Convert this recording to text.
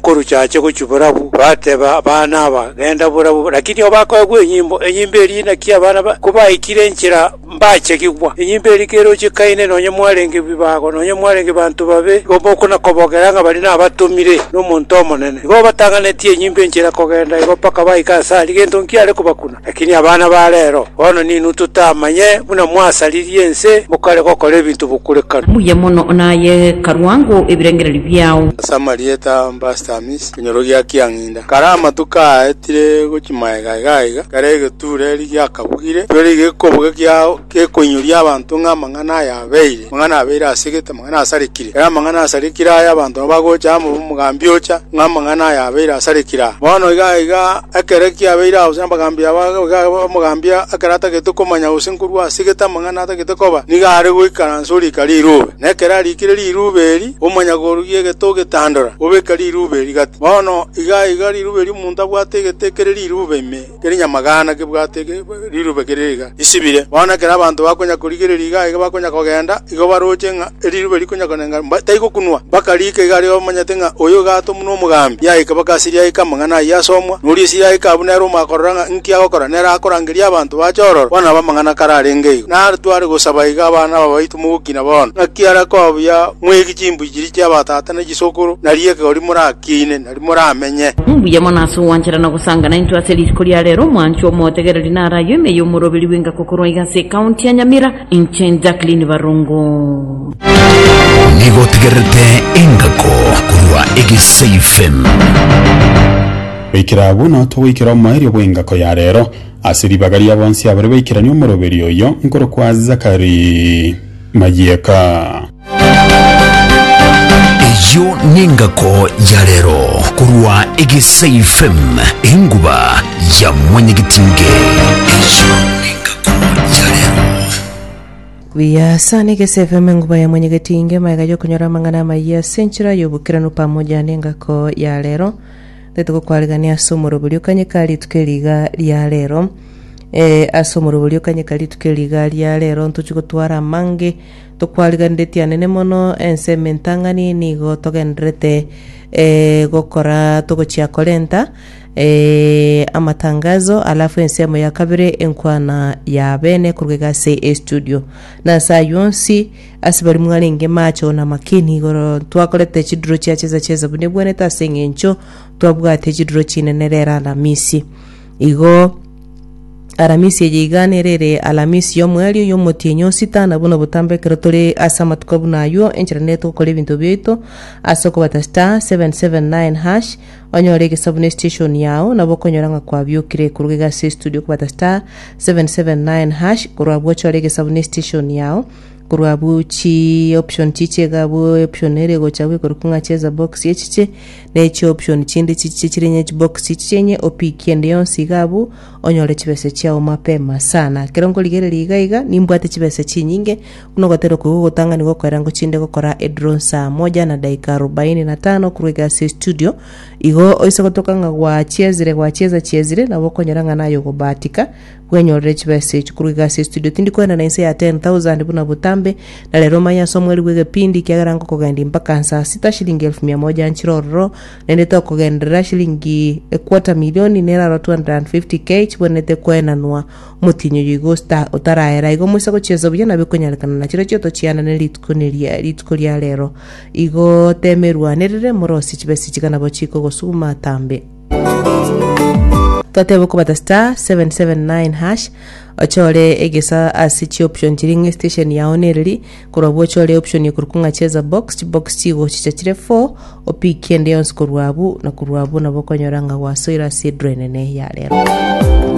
Koruchache gochia borabu, bateba abana aba, Genda borabu, lakini obakoegwe enyimbo, enyimbo eria naki abana ba kobaikire enchera mbachegigwa. Enyimbo eria kere ochikaine nonye mwarenge bibago, nonye mwarenge banto babe, igo mokona kobogera ng'a baria nabatomire nomonto omonene. Igo obatang'anetie enyimbo enchera kogenda igo mpaka baika asare, gento nkiare kobakuna. Lakini abana ba reero, bono ninwe totamanye, buna mwasaririe ense mokare gokora ebinto bokurekana. Mbuya mono naye karwango ebirengererio biao. Ase amarieta Bastamiss, ekenyorokia ekia ng'inda, kare amatuko aaetire gochia maega iga iga, kare egetuureri giakabugire, etuureri gi'ekobuga kiao, Gekoinyoria abanto ng'a amang'ana aya abeire, amang'ana abeire asegete, amang'ana asarekire. Ere amang'ana asarekire aya abanto nabo bagocha amo omogambi ocha, ng'a amang'ana aya abeire asarekire aa. Bono iga aiga, ekero kiabeire aase abagambi aba, iga aiga omogambi ekero atagete komanya gose nkorwa asegete amang'ana atagete koba, nigo are goikaransa orika rirube. Na ekero arikire rirube eri, omanya korugia egete ogetandora, obeka rirube eri gati. Bono iga aiga rirube ri'omonto abwate egete ekere rirube ime. Keri nyamagaana kebwate ege riruube kere iga isibire, bono ekero abanto bakonya korigereria iga aye bakonya kogenda, igo baroche ng'a eriruube rikonya konenga mba taigokunwa, mpaka riike iga aria bamanyete ng'a oyo iga atomwa n'omogambi. Yaika baka asiri yaika amang'ana ayio asomwa, na oria esiri yaika abwo nere omakorora ng'a inki agokora, nere akorangeria abanto bache ororo. Bono nabo amang'ana kare arenge igo. Na tware gosaba iga abana aba baito mogokina bono, ng'aki are koba buya mweegi chimbui chiria chi'abatata na chisokoro, na ri'ekegori morakiine, nari moramenye. Mbuya mono ase ogwanchera na gosangana intwe ase rituko ria rero, omwanchwa omotegereri naro ayio ime y'omoroberi bw'enka gokorwa iga ase ecounty ya Nyamira, inche Jacqueline Barongo. Nigo otegererete engako korwa egesaifm. Goikera agwo nao togoikera omoerio bw'engako ya rero ase ribaga ria bonsi abare baikeranie omoroberi oyio nkorokwa Zachary Mayieka. Eyio nengako ya rero korwa egesaifm enguba ya mwanyagetinge eyio nengako ya rero. Buya sana egese FM enguba ya mwenyegetinge maega yokonyora amang'ana amayia ase enchera y'obokeranu pamoja n'engako ya rero tete gokwarigania ase omorobori okanyeka rituko eri iga ria rero eh, ase omorobori okanyeka rituko eri iga ria rero ntochi gotwara amange Tokwariganiretie anene mono ensemo entang'ani, nigo togendererete eh, gokora togochia korenta eh, amatangazo, alafu ensemo ya kabere enkwana ya bene korwa iga ase estudio. Na ase ayio onsi, ase bari mwarenge macho na makini igoro, twakorete chiduro chia chesa chesa buna ebwenete ase eng'encho twabwate chiduro chinene rero Alamisi. Igo Alamisi eye igane ere ere Alamisi y'omweri oyio omotienyi o sita, na buna botambe ekero tore ase amatuko buna ayio, enchera nere togokora ebinto biaito ase okobata star 779 hash onyore egesabu ne station yao, nabo okonyora ng'a kwabiokire korwa iga ase estudio okobata star 779 hash korwa abwo ochore egesabu ne station yao korwa abwo chi option chiche iga abwo option ere egocha abwo ekorokwa ng'a cheza box echiche ne chi option chinde chichiche chire inye chibox chichiche inye opick ende yonsi iga abwo onyore chibesa chiao mapema sana ekero nkorigereria iga iga nimbwate chibesa chinyinge buna ogoteba oko igo ogotang'ani gokorera ngochinde gokora edrone saa moja na dakika arubaini na tano korwa egasi ya estudio igo oise gotoka ng'a gwachiezire gwachieza chiezire nabo okonyora ng'a naye ogobahatika Bwenyorere chibesa echi korwa egasi ya studio. Tindi koenda na inse ya 10,000 buna botambe, na rero omanye ase omweri bw'egepindi, ekiagera nkokogendia mpaka nsaa sita shilingi elfu mia moja nchire ororo, naende tokogenderera shilingi equarter milioni neraroo 250k chibwenerete koenanwa. Omotienyi oyo igo osta- otaraera igo moise gochiesa buya nabo ekonyarekana na chirochio tochianane rituko neria rituko ria rero. Igo temerwanerere morosie chibesa echi iga nabo chikogosuguma tambe. Twateba okobata star seven seven nine hash ochore egesa ase chioption chiria ng'a estation yao nereri korwa abwo ochore option ekorokwa ng'a cheza box chibox chigo chicha chire four opick ende yonsi korwa abwo na korwa abwo nabo okonyora ng'a gwasoire ase edraw enene ya rero